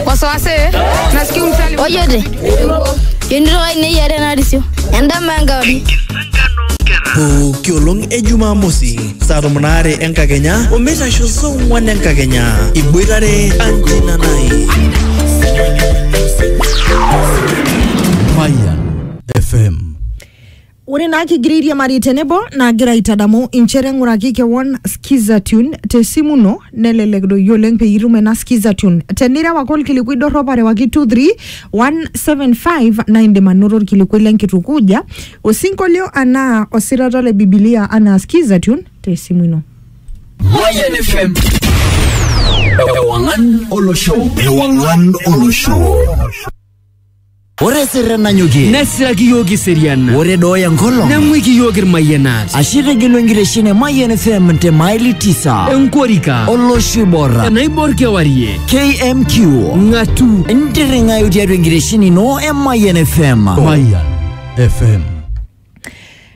wasiwasi nasikia msali oyode yonitoka ine yiare narisio endama enkauri pooki olong e jumamosi saa tomon aare enkakenya omeitasho saa ong'wan enkakenya iboitare anjina nai Fire FM. Ore naa kigira airiamari tenebo nagira aitadamu inchere ng'uraki kewon Skiza Tune te simu ino nelelek doi oleng peyie itum ena Skiza Tune. Tenireu ake olkilikuai dorrop arewaki 23175 naa indim anoto olkilikuai le nkitukuja, osinkolio anaa osirata le Bibilia anaa Skiza Tune te simu ino. Mayan FM. Ewangan Olosho. Ewangan Olosho. Ore sirren nanyokie. Nesiraki iyiook iserian. Ore dooya enkolong. Neng'uiki iyiook irmayianat. Ashe itegelu enkitesheni e Mayian FM te maili tisa. Enkorika. Olosho oiborra. Enaibor kewarie. KMQ. Ng'atu. Ntirring'ayu tiatua enkitesheni ino e Mayian FM. Mayian FM.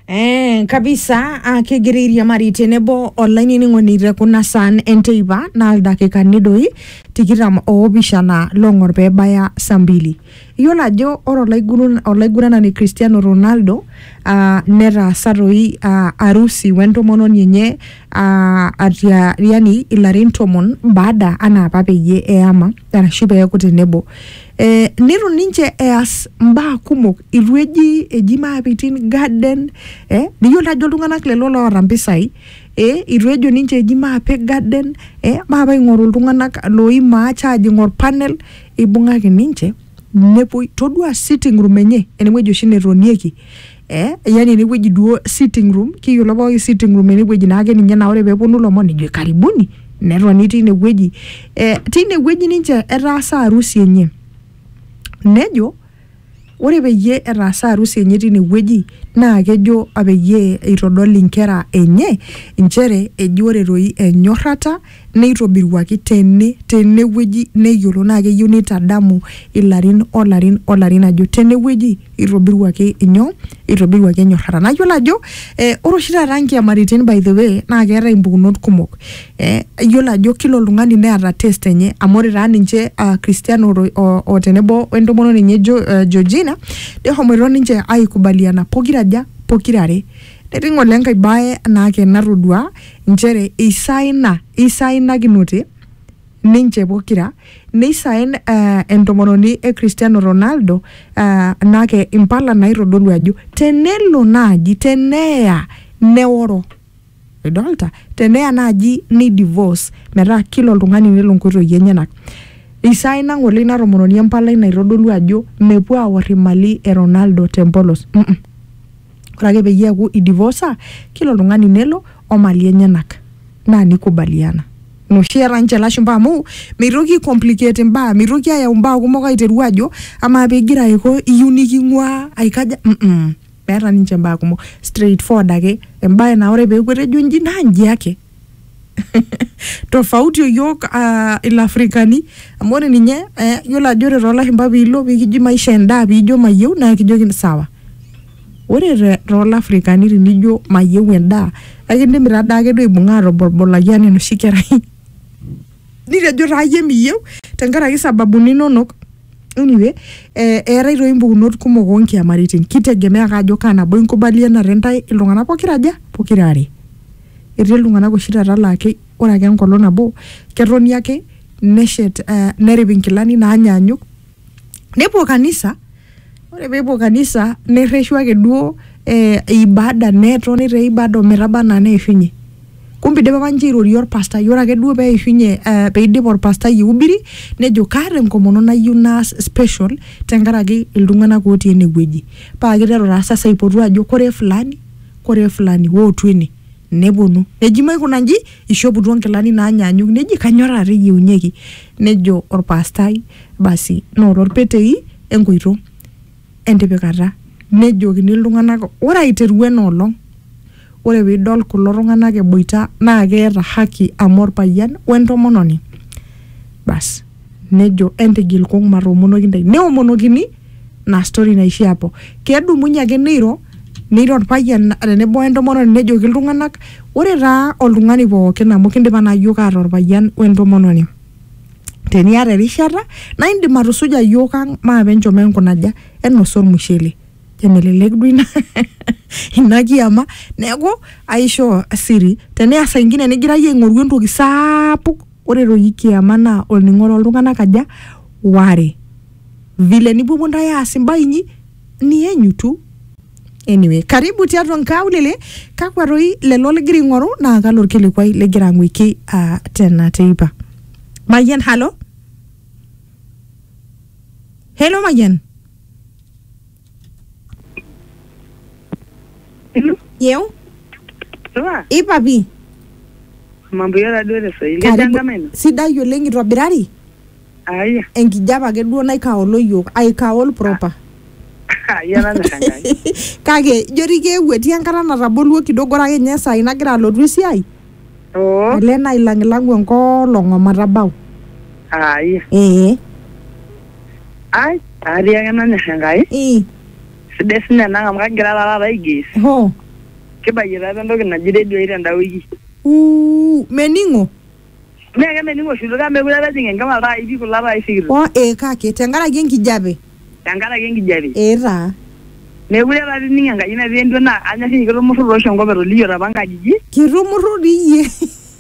Eh, kabisa ah, kegira airiamari tenebo olainining'oni te kuna saan enteipa naa ildakikani doi tikitam oopishana loong'or pee ebaya saa mbili. Iyiolo ajo ore olaigurun- olaiguranani Cristiano Ronaldo ah, netaasa doi ah, arusi we ntomononi enye ah, atia yani ilarin tomon baada anaa apa peyie eyama. arashu peeku tenebo eh, nitu ninche eas mbaa kumok itu eji eji maapitin garden eh, niyiolo ajo iltung'anak lelo loota mpisai eh, itu ejo ninche eji maape garden eh, maape aing'oru iltung'anak loimaa charging or panel ibung'aki ninche nepuoi todua sitting room enye enewueji oshi netonieki eh, yani enewueji duo sitting room kiyiolo pooki sitting room enewueji naake ninye naa ore peeponu ilomon nejo karibuni netoni tinewueji eh, tinewueji ninche etaasa harusi enye nejo ore peyie etaasa harusi enye tinewueji naa kejo peyie eitodol inkera enye inchere eji ore toi enyorrata neitobiruaki tene tenewueji neyiolo naa keyieu neitadamu ilarin olarin olarin ajo tenewueji itobiruaki inyoo itobiruaki enyorrata naa iyiolo ajo eh, ore oshi taata nkiamaritin by the way naa keetae impukunot kumok eh, iyiolo ajo kila oltung'ani neeta test enye amu ore taa ninche uh, Cristiano ro- o, o tenebo wentomononi enye jo, uh, Georgina nehomoito ninche aikubaliana pokiraja pokirare netii ng'ole enkae bae naake natodua nchere eisaina, eisainakinote ninche pokira, neisaen eh, entomononi e Cristiano Ronaldo eh, nake impala naitodolu ajo tenelo naaji teneya neoro idolta teneya naaji ni divorce metaa kila oltung'ani nelo nkoitoi enyenak isaina ng'ole ina tomononi empalai naitodolu ajo mepuo aor imali e Ronaldo tempolos mm -mm. Ore ake peyie eaku idivosa kila oltung'ani nelo o mali enyenak naa nikubaliana. Ina oshi eeta ninche ilashumba amu meitoki aikomplicate imbaa, meitoki ayau imbaa kumok aiteru ajo amaa pigira aiko iyieu niking'uaa aikaja, mm meeta ninche imbaa kumok, straightforward ake embae naa ore peeku etejo inji naa inji ake. tofauti oyiok uh, ilafrikani amu ore ninye eh, yiolo ajo ore toolashumpa piilo pikiji maisha endaa piijo mayieu naa kijoki sawa ore te- toolafrikani tinijo mayieu endaa ekindimi taa daake duo aibung'a atoborbolaki anaa enoshi kerai nitejo taa iyie miyieu tenkaraki sababuni inonok anyway eh, eetae toi impukunot kumok onkiamaritin kitegemea ake ajo kaa nabo inkubalianate intae iltung'anak pokira aja pokira are. Etii iltung'ana oshi taata laa ore ake enkolong nabo ketoni ake neshet nerip inkilani naanyaanyuk nepuo kanisa ore peepuo kanisa nerreshu ake duo ibada netoni te ibada ometaba anaa neishunye kumbe eidipa apa ninche airorie orpastai ore ake duo peishunye eh peidip orpastai aihubiri nejo kaata enkomono nayieu naas special tenkaraki iltung'anak otii enewueji paa kiteru taa sasa aipotu ajo koree fulani. Kore fulani wootu ene nepuonu neji maikuna nji, eishoputuo nkilani naanyaanyuk neji kanyoo taata eyieunyeki? Nejo olpaastai basi noto lpetei enkoito entipikata. Nejokini iltung'ana ore aiteru ena olong' ore piidol kulo tung'ana eboita naa keeta haki amu olpayian wentomononi. Basi nejo entigil kung' matoomonoki ntae. Neomonokini. na story naishia hapo kedumunye ake neiro neiro orpayian tenebo entomononi nejoki iltung'anak ore taa oltung'ani pookin amu kindipa naa yiok aata orpayian wentomononi teniata erishata naa indim atusuja yiok ang maape enchom enkunaja enosa ormushele emelelek duo ina ina kiama neeku aishoo siri teneasa ingine nigira iyie aing'oru entoki saapuk. Ore toki kiama naa olning'o too ltung'ana aja? Waare. Vile nipuopuo ntae aas imbaa inyi nienyu tu. Anyway, karibu tiatua nkaulele, kakwa toi lelo ligira aing'oru naa kalo olkilikuai ligira ang'uiki uh, tena teipa. Mayian, halo? Hello Mayian? Hello, yeu Sure. ipapi Mambo yara duo te Swahili. Karibu. Ejangama ino. sidai oleng itobirari Aya. enkijape ake duo naikaolo yiok aikaol proper Yara na kangai. kake ijo dii keewuo etii enkata nataboluo kidogo ore ake ninye saai nagira alotu esiai Oh. ele nailang'ilang'u enkolong omatabau Aya. ee ai atii ake nanyor enkai ii sidai sinye enang amu kagira taa taata aigis hoo kibayie taa apa entoki naji redio ai tenda wiki uu mening'o mee kemening'o oshi kake mekure apa ejing enkima iltai pi kulo tai sikitok oo ee kake tenkaraki enkijape tenkaraki enkijape ee taa mekure taata ining enkaji natii entua naa anyorr inye kitumurru tooshi enkop etoliyiota apa inkajijik kitumurru dii iyie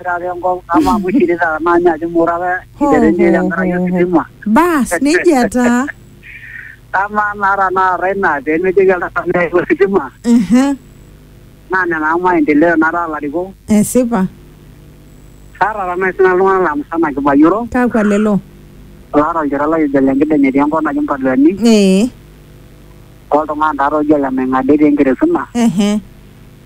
ore enkop ama amu shirita naa ninye ajo mora apa iterenie tenkaraki ositima bas nejia taa amaa naa tanakata ina pemejoki oltaka meeu ositima Ehe, naa nena amu maendeleo nataa ilarikok esipa kaata tanaa sina iltung'anak laa musana kibayioro kakwa lelo laata olchore lai ojo ole nkideny etii enkop naji mpaluani ee oltung'ani taata oji ole maing'ada etii enkeresuna ehe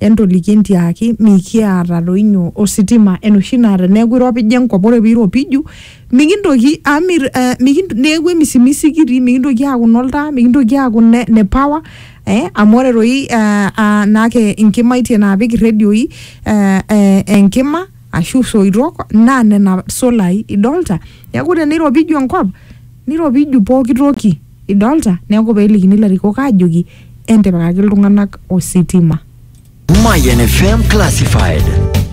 Entoliki entiaaki mikiata doi nyoo ositima enoshi naa teneeku iropija enkop ore piiropiju mikintoki amu mir eh, mikint- neeku emisimisi kitii mikintoki aaku inoltaa mikintoki aaku ne, ne power eh, amu ore doi eh, ah, naake inkimaitie naapik irredioi eh, eh, enkima ashu isoitok naa nena solai idolta neeku teneiropiju enkop niropiju pooki toki. Idolta? Neeku pelikini ilarikok ajoki entipikaki iltung'anak ositima. Mayan FM Classified.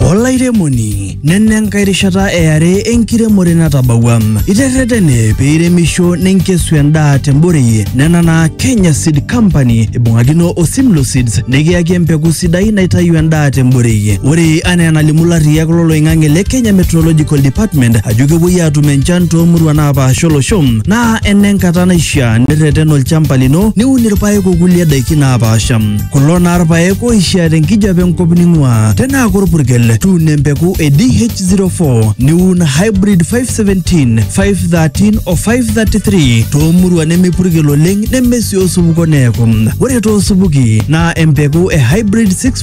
Olairemoni, nena enkae rishata e are enkiremore natabawua. Iterretene pee iremisho ninkesu endaa temborei nena naa Kenya Seed Company ibung'akino o Simlo Seeds nikiyaki empeku sidai naitayu endaa temborei. Ore anaa enalimu ilarriyak loloing'ang'e le Kenya Meteorological Department ajo kepuoi aatum enchan toomuruan naapaasha olosho Naa enenkata naishiaa nirreten olchamba lino niun irpaek okulie daiki naapaasha. Kulo naa irpaek oishiaa tenkijape enkop ning'uaa. Tenaa korpurkel, tuuno empeku e DH04 niun hybrid 517, 513 o 533 toomuruan nemepurkel oleng neme sii osupuko neeku. Ore toosupuki naa empeku e hybrid 6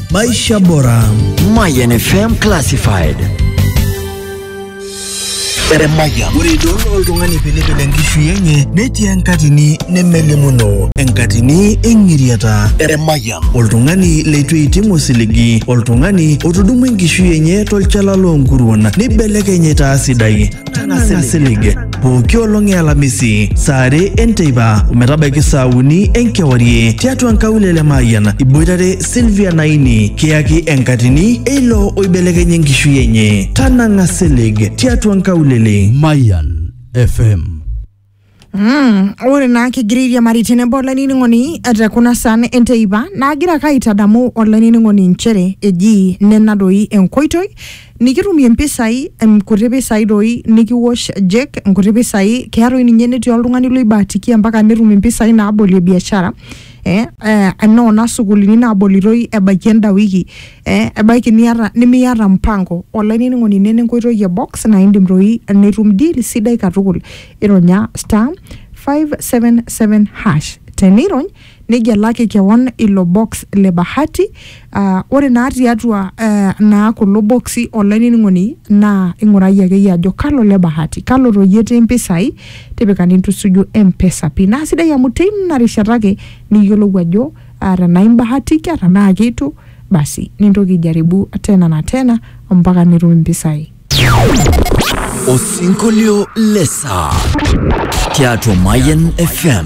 Maisha Bora. Mayan FM Classified. Eremaya. Ore idol oltung'ani pilipil enkishui enye netii enkatini nemelimuno, enkatini eng'iriata. Eremaya. Oltung'ani leitu eiting osiligi, oltung'ani otudumua enkishui enye tolchala loonkuruon neibelekeny aitaa sidai. Tang'asa silig pooki olong e Alamisi saa are enteipa ometabaiki saa uni enkewarie tiatua nkaulele Mayian iboitare Sylvia Naini kiyaki enkatini eilo oibelekenya enkishui enye. Tanang'a silig tiatua nkaulele. Mayan FM Mm, ore naa kigira airiamari tenebo olainining'oni te kuna saan enteipa naagira ake aitadamu olainining'oni inchere eji nena doi enkoitoi nikitumie mpisai em, kuti pisai doi nikiwosh jek nkuti pisai keya doi ninye netii oltung'ani loibahatikia mpaka netum impisai naabolie biashara eh, eh, noona sukulini nabolitoi ebaiki enda wiki eh, ebaiki niata nimiata mpango olainining'oni ine nenkoitoi e box naa indim doi nitum deal sidai katukul ironya star 577 hash tenirony nigelaki kewon ilo box le bahati uh, ore naa tiatua uh, naa kulo boksi olainining'oni naa ing'urayie akeyie ajo kalo le bahati kalo toyie etii mpisai tipika nintusuju mpesa pin naa sidai amu teina rishata ake niyiolou ajo Ah, tenaa imbahatika tenaa keitu basi nintoki aijaribu tena na tena mpaka nitum impisai Osinkolio le saa tiatua Mayian FM.